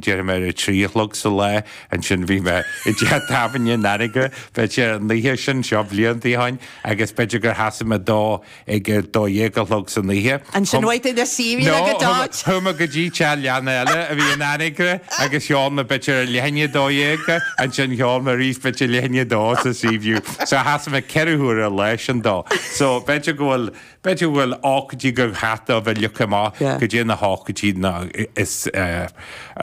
déarfaidh mé ar a trí a chlog sa lá, ansin bhí mé i dteach tábhairne in Anagaire, b'fhéidir sé an oíche sin, seo blianta ó shin, agus b'fhéidir gur sheasaigh mé dó ag a dó dhéag a chlog san oíche. Ansin chuaigh tú le síbín No, agus chuaigh mé, George. chuaigh mé go dtí teach leanna eile a bhí in Anagaire agus cheol mé b'fhéidir ar leath i ndiaidh a dó dhéag, ansin cheol mé arís b'fhéidir leath i ndiaidh a dó sa Seaview. So sheasaigh mé ceithre huaire an lá sin dó. So b'fhéidir go bhfuil. B'fhéidir go bhfuil ócáidí go gcaithfidh tú a phiocadh amach goidé na hócáidí ná is a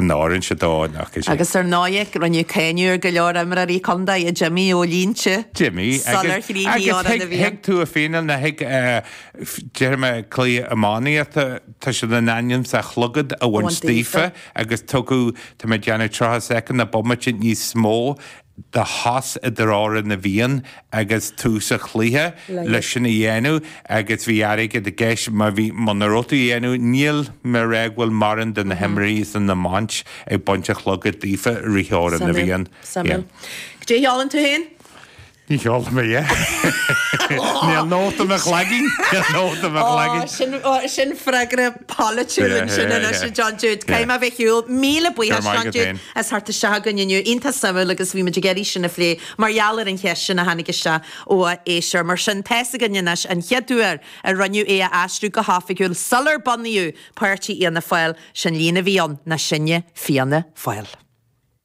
n-oireann sé dó an oíche sin. Agus ar ndóighe, rinneadh cáineadh ar go leor imreoirí contae, ag imeacht ó línte, ag imeacht sular chríochnaigh Amhrán na bhFiann, thig tú a fhíneáil nó thig déarfaidh mé cluichí iománaíochta, tá siad in ainm is an clogad a bhaint daofa agus tugadh tá mé ag déanamh 30 soicind nó bomaite níos mó, de shos idir Amhrán na bhFiann agus tús an chluiche leis sin a dhéanamh agus bhí airgead i gceist má bhí muna raibh tú á dhéanamh níl mé ag ráit go bhfuil mórán de na himreoirí sin á mbaint ag baint an chlogaid daofa i rith Amhrán na bhFiann yeah. An gceolann tú féin? Ní cheolfaidh mé é. Níl nóta i mo chloigeann nóta i mo chloigeann. sin sin freagra polaitiúil ansin anois a John Jude. Caithfidh mé a bheith ar shiúl, míle buíochas John Jude as theacht isteach chugainn inniu. Iontach suimiúil agus bhí muid ag iarraidh sin a phlé mar gheall ar an cheist sin a tháinig isteach ó éisteoir. Mar sin, tá's againn anois an chéad uair a rinneadh é a aistriú go hoifigiúil sular bunaíodh páirtí Fhianna Fáil. Is an líne a bhí ann ná Sinne Fianna Fáil.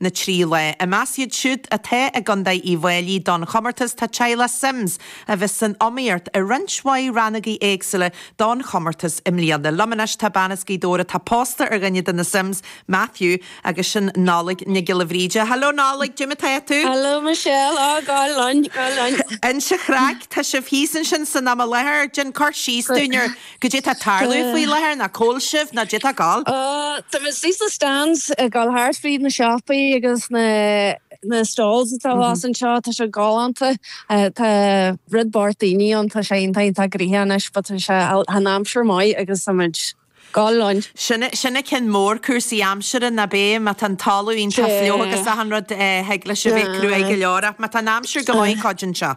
na trí lá. I measc iad siúd atá i gContae Uíbh Fhailí don chomórtas tá teaghlach Simms a bheas san iomaíocht i roinnt mhaith rannógaí éagsúla don chomórtas i mbliana. Liom anois tá bean as Gaoth Dobhair atá pósta ar dhuine de na Simms, Matthew, agus sin Nollaig Nic Giolla Bhríde. Hello Nollaig! Goidé mar atá tú? Hello Michelle! Á, go hálainn, go hálainn. Inis an chraic, tá sibh thíos ansin san am i láthair. Déan cur síos dúinn ar. Goidé atá ag tarlú faoi láthair nó cá bhfuil sibh nó goidé atá ag gabháil. Tá muid thíos ag na stands ag gabháil thart fríd na siopaí agus na stalls atá abhus anseo tá sé galánta tá rud beart daoine ann tá sé iontach iontach gnoitheach anois but tá sé an aimsir maith agus tá muid ag gabháil linn. Sin an ceann mór cúrsaí aimsire nó b'fhéidir má tá an talamh iontach fliuch agus achan rud thig leis a bheith cruaidh go leor ach má tá an aimsir go maith cuidíonn sé.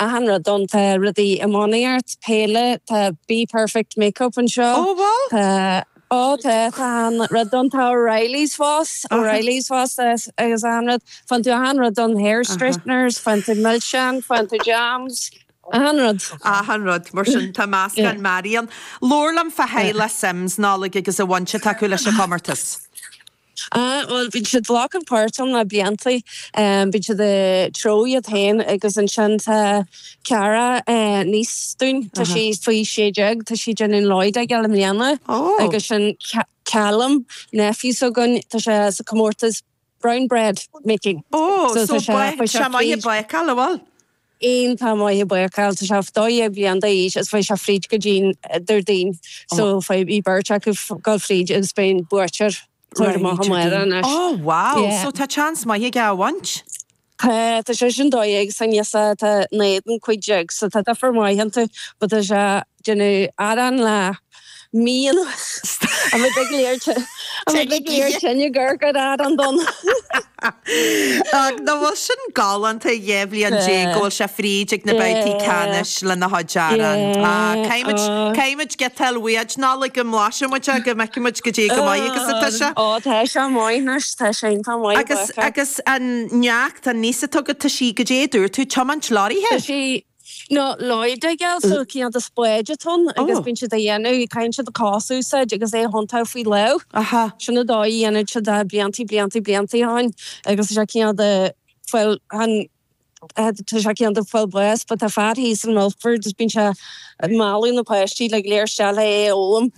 Achan rud ann, tá rudaí iománaíocht, peile, tá Be Perfect Make Up anseo. Ó bhá? Tá, ó tá, tá achan rud ann, tá O'Reilly's Sports, O'Reilly's Sports agus achan rud. Faigheann tú achan rud ann, Hair Straighteners, faigheann tú milseáin, faigheann tú jams, achan rud. Achan rud, mar sin tá meascán maith ann. Labhair liom fá theaghlach Simms, Nollaig agus an bhaint atá acu leis an gcomórtas. Ah, bhuel, bíonn siad ag glacadh páirt ann le blianta. Bíonn siad ag treabhadh iad féin agus ansin tá Cara, niece dúinn, tá sí faoi sé déag, tá sí déanamh loy digging i mbliana agus ansin Callum, nephew s'againn, tá sé sa comórtas brown bread making. Oh, so tá sé maith ag bácáil, an bhfuil? ó tá maith ag bácáil tá sé 12 bliain d'aois agus chuaigh sé fríd go dtí'n Déardaoin so faidh bhí beirt acu dul fríd agus beidh an buaiteoir tabhairt amach amárach anois oh wow yeah so tá chance maith aige a bhaint. tá tá sé sin 12 agus tá an té atá ina éadan cúig déag so tá difear maith iontu but tá sé déanamh arán lá Mhíl a bheith ag léir tine Gaeilge ar arán donn. Ach nach bhfuil sin galánta, dhá bhliain déag go bhfuil sé fríd ag na babhtaí ceannais lena chuid arán. Caithfidh muid giota a fháil uait, Nollaig, go mblaisfidh muid é go bhfeicfidh muid goidé chomh maith agus atá sé. Ó, tá sé maith anois, tá sé iontach maith i bhfad. Agus an neacht, an niece atá agat, tá sí, goidé a dúirt tú, tiomáint leoraithe? Tá sí. nó loy digging, cineál de spáid atá ann agus bíonn siad á dhéanamh, caitheann siad do chos a úsáid agus é a thiontú faoi lámh. Sin an dóigh a dhéanann siad é blianta, blianta, blianta ó shin agus tá sé cineál de fáil, chan, tá sé cineál de fáil bháis but tá fear thíos in Milford agus bíonn sé ag mealladh na páistí le léarscáil é a fhoghlaim.